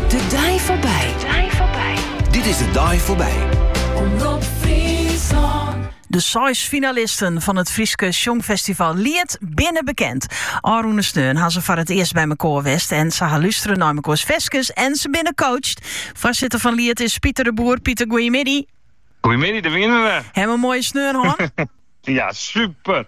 De dei foarby. Dit is de dei foarby. Omrop Friesland. De seis finalisten fan it Fryske Sjongfestival Liet binne bekend. Ofrûne sneon ha se foar it earst by mekoar west en se ha lústere nei mekoars ferskes en se binne coacht. Foarsitter fan Liet is Pieter de Boer. Pieter, goeiemiddei. Goeiemiddei, dêr wienen we. Ha jim in moaie sneon hân. Ja, super.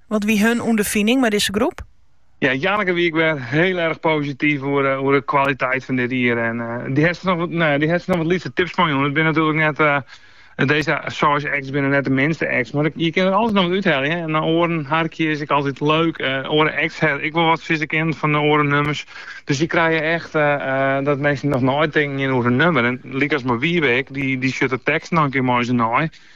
Wat wie hun ûnderfining mei dizze groep? Ja, Janneke wie ek wer hiel erg posityf oer de kwaliteit fan dit jier. En dy hat noch wat, nou ja, dy hat noch wat lytse tips meijûn. It binne natuerlik net, dizze seis acts binne net de minste acts, mar je kinne der altyd noch wat úthelje. En nei oaren harkje is ek altyd leuk. Oare acts ha ek wol wat sizze kinnen fan de oare nummers. Dus je krije echt dat minsken noch neitinken gean oer in nummer. En lykas mei Wiebe ek, dy sjocht de teksten noch in kear mei se nei.